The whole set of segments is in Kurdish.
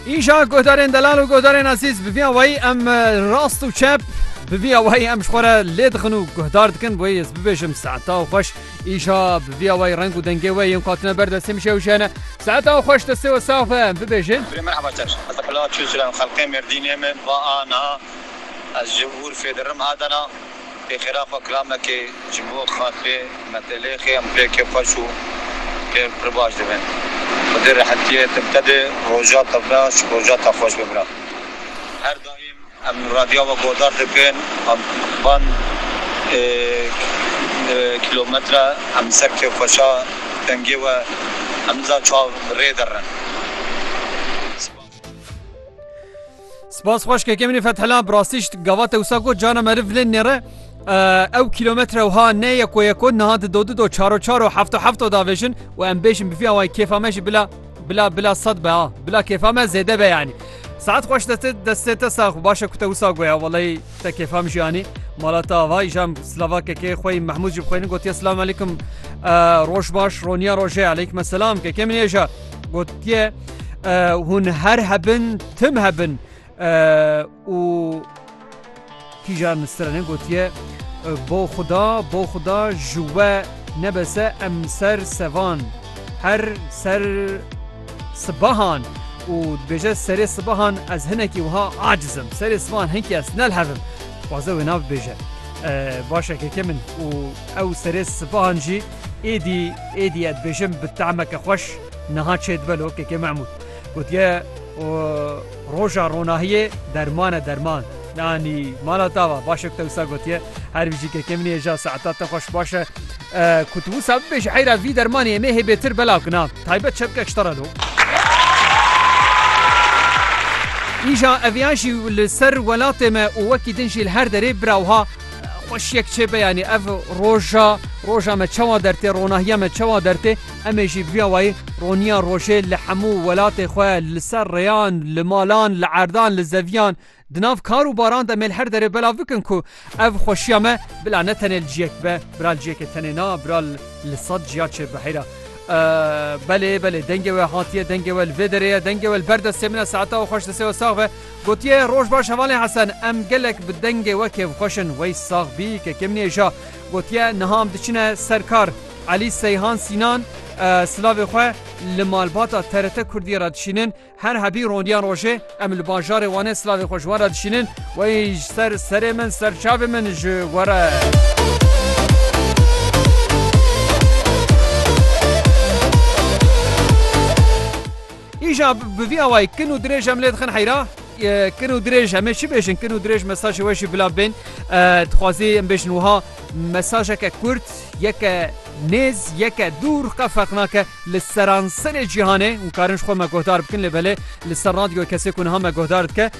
Îja guhdarên delal û guhdarên ezîz bi vî awayî em rast û çep bi vî awayî em ji xwe re lê dixin û guhdar dikin wê ez bibêjim saeta xweş îja bi vî awayî reng û dengê wê yên katine ber destê min şew jene saeta xweş destê we sax be em bibêjin Merhaba çaş ez li Qila Çûçiran xelkê Mêrdînê me va a niha ez ji Urfê dirim Adana Pê xêra xwe kilamekê ji bo xatê metelêxê em pêkê xweş û pê pir baş dibin. Xwedê rehetiyê te bide roja te baş, roja te xweş be bira. Her daîm em radiya we godar dikin em van kîlometre em ser kê xweşa dengê we em niza çav bi rê derin. Spas. Spas xweş kekê min ê Fethela, bi rastî ji gava te wisa got carna meriv vilên nêre ew kîlometre wiha ne yeko yeko niha dido dido çaro çaro hefto hefto davêjin û em bêjin bi vî awayî kêfa me jî bila bila bila sed be ha bila kêfa me zêde be yanî Saet xweş destê destê te sax û başe ku te wisa goya weleyî te kêfa min jî yanî mala te avayî jam silava kekê xwe Mehmûd jî bi xwênin gotiye silam aleykum roj baş roniya rojê aleykum selam kekê min êja gotiye hûn her hebin Tim hebin û kîjan stranên gotiye bo xuda bo xuda ji we nebese em ser sevan her ser sibahan û dibêje serê sibahan ez hinekî wiha acizim serê sibahan hinkî ez nelhevim dixwaze wê nav bêje başe keke min û ew serê sibahan jî êdî êdî ez dibêjim bi temeke xweş niha çêdibelo keke Mehmûd. Gotiye û roja ronahiyê derman e derman. Nanî mala tava baş te wisa gotiye her bijî ke kemî hêja saeta te xweş baş e ku tu wisa bibêjî heyra vî dermanê em ê hê bêtir belav kina taybet çepkek ji te re lo. Îja eviyan jî li ser welatê me û wekî din jî li her derê bira wiha xweşiyek çêbe yanî ev roja roja me çawa dertê ronahiya me çawa dertê Em ê jî bi vîya wayî roniya rojê li hemû welatê xwe li ser rêyan, li malan, li erdan, li zeviyan, di nav kar û baran de mê li her derê belav bikin ku ev xweşiya me bila ne tenê li ciyek be, bira li ciyekê tenê na, bira li sed ciya çêr be. Heyra. Belê, belê, dengê we hatiye, dengê we li vê derê ye, dengê we li ber destê min e, saeta we xweş, destê we sax be. Gotiye, Roj baş hevalên Hesen, em gelek bi dengê we kêfxweş in, wey sax bî, kekê min ê ja. Gotiye, Niha em diçine ser kar. Elî Seyhan Sînan, Silavê xwe li malbata TRT Kurdiyê re dişînin. Her hebî rondiyan rojê em li bajarê Wanê silavê xwe ji wan re dişînin. Wey ji ser serê min, ser çavê min ji we re. Îja bi vî awayî kin û dirêj em lê dixin heyra. Kin û dirêj em ê çi bêjin kin û dirêj mesajê we jî bila bên. Dixwazî em bêjin wiha mesajeke kurd yeke nêz yeke dûr qe ferq nake li seranserê cîhanê û karin ji xwe me guhdar bikin lê belê li ser radyo kesê ku niha me guhdar dike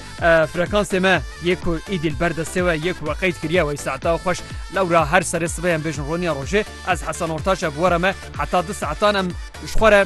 frekansê me yê ku îdî li ber destê we yê ku we qeyd kiriye wey saeta xweş lewra her serê sibê em bêjin roniya rojê ez hesan ortaç e bi were me heta du saetan em ji xwe re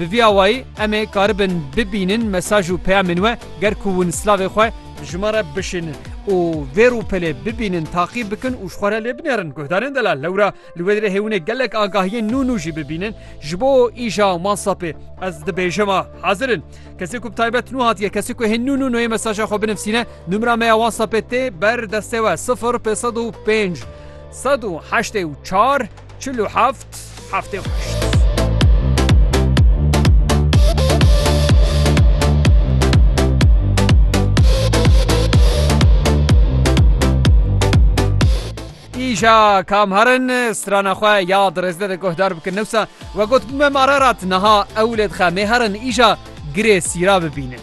Bi vî awayî em ê karibin bibînin mesaj û peyamên we ger ku hûn silavê xwe bi ji me re bişînin û vê rûpelê bibînin, taqîb bikin û ji xwe re lê binêrin. Guhdarên Delal lewra li wê dirê hêwinê gelek agahiyên nû nû jî bibînin. Ji bo îja Whansapê ez dibêjim a hezir in. Kesê ku bi taybet nû hatiye, kesê ku hê nû nû nûyê mesaja xwe binivsîne, nûmera me ya Whansapê tê ber destê we sifir pêsed û pênc sed û heştê û çar. Çil û heft heftê xwe kişt. Îşa kamherin strana xwe ya dirêzde de guhdar bikin newsa we got bûme mararat niha ewlê dixe mêherin îşa girê sîra bibînin.